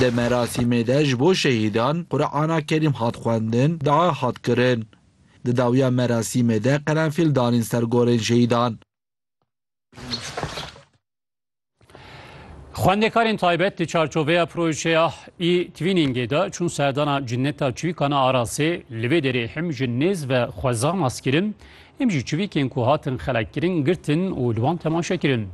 Di merasîmê de ji bo şehîdan Qur'ana Kerîm hat xwendin, dua hat kirin. Di dawiya merasîmê de qerenfîl danîn ser gorên şehîdan. Xwendekarên taybet di çarçoveya projeya e-Twiningê de çûn serdana Cinneta Çivîkana Arasê, li vê derê him ji nêz ve xwezan askirin, him jî çivîkên ku hatin xelekkirin girtin û li wan temaşe kirin.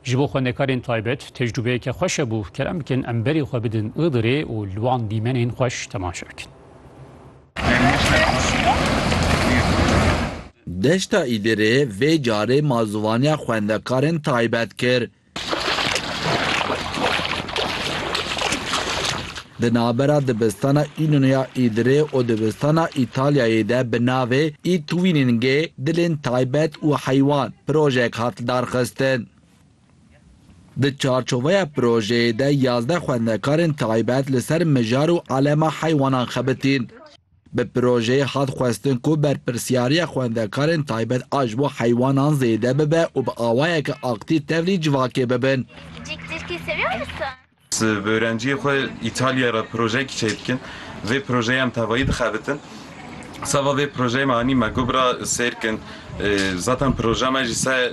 Ji bo xwendekarên taybet tecrûbeyeke xweş hebû, kerem bikin em berê xwe bidin Îdirê û li wan dîmenên xweş temaşe bikin. Deşta Îdirê vê carê malzivaniya xwendekarên taybet kir. Di navbera dibistana Înonoya Îdirê û dibistana Îtalyayê de bi navê I Twiningê, Dilên Taybet û Heywan, projeyek hat lidarxistin. Di çarçoveya projeyê de yazdeh xwendekarên taybet li ser mijar û elema heywanan xebitîn. Bi projeyê hat xwestin ku berpirsyariya xwendekarên taybet a ji bo heywanan zêde bibe û bi awayeke aktîv tevlî civakê bibin. Bi ewrenciyê xwe Îtalyayê re projeyekî çêk dikin. Vê projeyê em tevayî dixebitin. Seba vê projeyê me anî me got re sêr kin. Zaten projeya me jî ser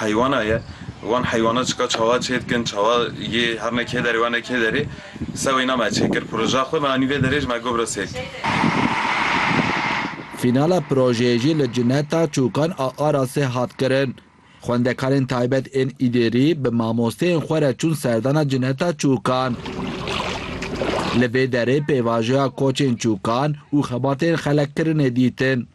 heywana ye. Wan heywana çika çawa çê dikin, çawa yê her ne kê derê wan ne kê derê. Ser wêna me çê kir projeya xwe. Me anî vê derê jî me got re sêr kin. Fînala projeyê jî li Cineta Çûkan a Arasê hat kirin. Xwendekarên taybet ên Îdêrî bi mamosteyên xwe re çûn serdana Cineta Çûkan. Li vê derê pêvajoya koçên çûkan û xebatên xelek kirine dîtin.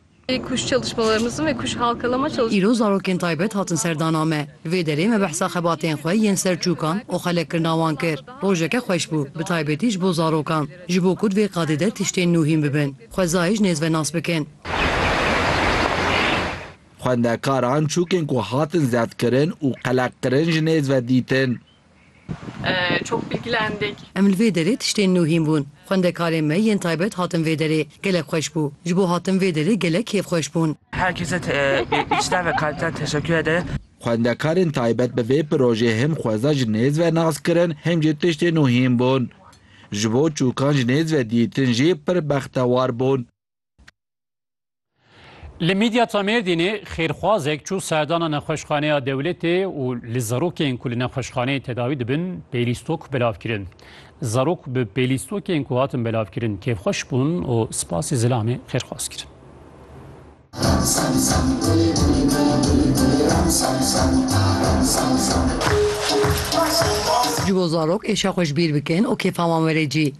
Îro zarokên taybet hatin serdana me. Li vê derê me behsa xebatên xwe yên ser çûkan û xelekkirina wan kir. Rojeke xweş bû, bi taybetî ji bo zarokan. Ji bo ku di vê qadê de tiştên nû hîn bibin, xwezayê ji nêz ve nas bikin. Xwendekaran çûkên ku hatin zevkirin û qeleqkirin ji nêz ve dîtin. Çok bilgilendik. Em li vê derê tiştên nû hîn bûn. Xwendekarên me yên taybet hatin vê derê. Gelek xweş bû. Ji bo hatin vê derê gelek kêfxweş bûn. Herkese içten ve kalpten teşekkür ederim. Xwendekarên taybet bi vê projeyê him xweza ji nêz ve nas kirin him jî tiştên nû hîn bûn. Ji bo çûkan ji nêz ve dîtin jî pir bextewar bûn. Li Midyata Mêrdînê xêrxwazek çû serdana nexweşxaneya dewletê û li zarokên ku li nexweşxaneyê tedawî dibin pêlîstok belav kirin. Zarok bi pêlîstokên ku hatin belavkirin kêfxweş bûn û spasî zilamê xêrxwaz kirin. Ji bo zarok êşa xwe ji bîr bikin û kêfa wan were cî.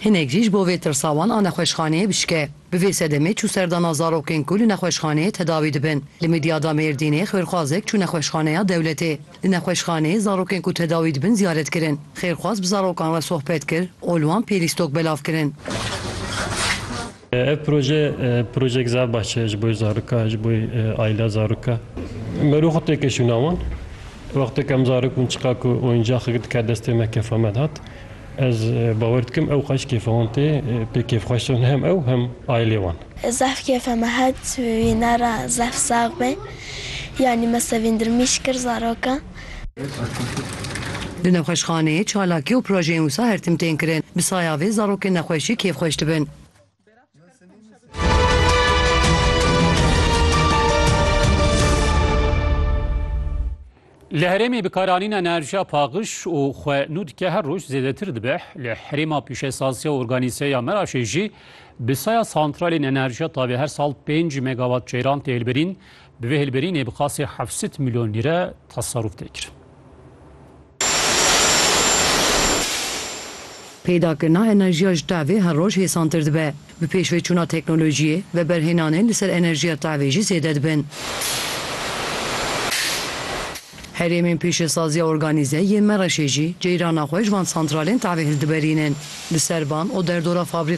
Hinek jî ji bo vê tirsa wan a nexweşxaneyê bişke. Bi vê sedemê çû serdana zarokên ku li nexweşxaneyê tedawî dibin. Li Midyada Mêrdînê xêrxwazek çû nexweşxaneya dewletê. Di nexweşxaneyê zarokên ku tedawî dibin ziyaret kirin. Xêrxwaz bi zarokan re sohbet kir û li wan pêlîstok belav kirin. Ev proje projek za bahçe ji bo zaroka ji bo ayla zaroka mero xwe têkeşûna wan. Wextê em zarok bûn çiqa ku oyuncaxek dike destê me kefa me dihat. Ez bawer dikim ew xweş kêfa wan tê pê kêfxweş in hem ew hem aylê wan. Zaf kêfa me hat wîna ra zaf sax be. Yanî me sevindirmîş kir zaroka Di nexweşxaneyê çalakî û projeyên wisa her tim tên kirin. Bi saya vê zarokên nexweşî kêfxweş dibin. Li herêmê bikaranîna enerjiya paqiş û xwe nû dike her roj zêdetir dibe. Li herêma pîşesasiya organîze ya Meraşê jî bi saya santralên enerjiya tavê her sal pênc megawat ceyran tê hilbirîn. Bi vê hilberînê bi qasê heft sed milyon lîre teserûf tê kirin. Peydakirina enerjiya ji tevê her roj hêsantir dibe. Bi pêşveçûna teknolojiyê, veberhênanên li ser enerjiya tevê jî zêde dibin. Herêmên pêşesaziya organîze yê Mereşê jî ceyrana xwe ji van santralên tevê hildiberînin. Li ser van û derdora fabrîkan,